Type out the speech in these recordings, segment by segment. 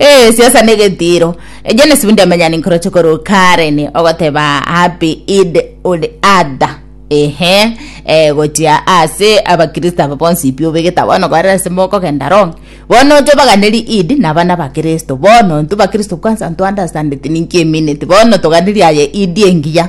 Ee, siasa negetiiro. Eje nesibindi yamenya ninkoroche korwa Karen ogoteba happy Eid ul Adha. Ehe, eh, gochia ase abakristo aba bonsi pi obegete bono korera ase mokogenda wrong. Bono oche obaganeri Eid na abana bakristo. Bono intwe bakristo kwanza nto understand ti ninki emineti. Bono toganerie aye Eid engiya.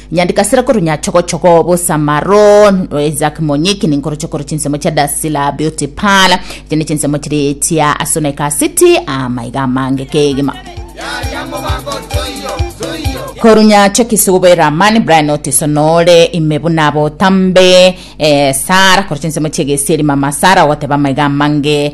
Nyandikasira korwa Nyachogochogo, Bosamaro, Isaac Monyiki ninkoroche korwa chinsemo chia Dasila Beauty Parlor. Echi ne chinsemo chiri chia Asuneka City amaiga amange kegima. Korwa Nyachokisi Gobe Ramani, Brian Otiso Nore, ime buna abotambe, eh, Sara, korwa chinsemo chia Egesieri Mama Sara ogoteba amaiga amange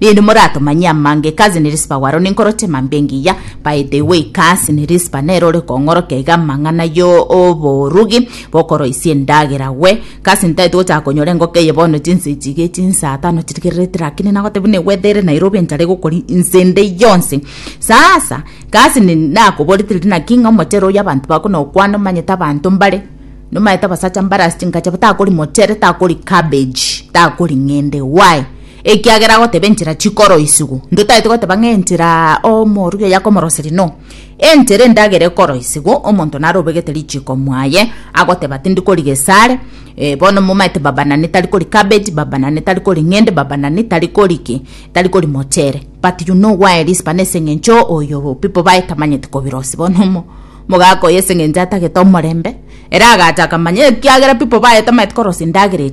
Rinde moratomanyie amangeko ase Nirisipa waro ninkoroche mambia engiya, by the way kasi Nirisipa nere ore kong'orokia iga amang'ana yo oborugi bokoroisia endagera gwe, kasi ntaete gochaka konyora engoko eye bono chinsa echi iga echinsa tano chirigererete rakini nagotebia buna egwethere Nairobi enchara egokori inse ende yonsi. Sasa kasi ni nakoborete riria naki ng'a omochere oyio abanto bako nokwa nomanyete abanto mbare nomanyete abasacha mbare ase chinkache batakori mochere takori cabbage takori ng'ende why? Ekiagera agoteba enchera chikoroisigwa, ntotaete goteba ng'a enchera omorugi oye akomoroseria no. Enchera endagera ekoroisigwa, omonto naro obegete richiko mwaye, agoteba tindi koriga esare, eh, bono momaete baba nane tari kori cabbage, baba nane tari kori ng'ende, baba nane tari kori ki, tari kori mochere. But you know why Rispa na eseng'encho oyo people baye tamanyeti kobirosia. Bono omo omogaka oyo eseng'encho atagete omorembe, ere agacha akamanya ekiagera people baye tamanyeti korosia endagera eria.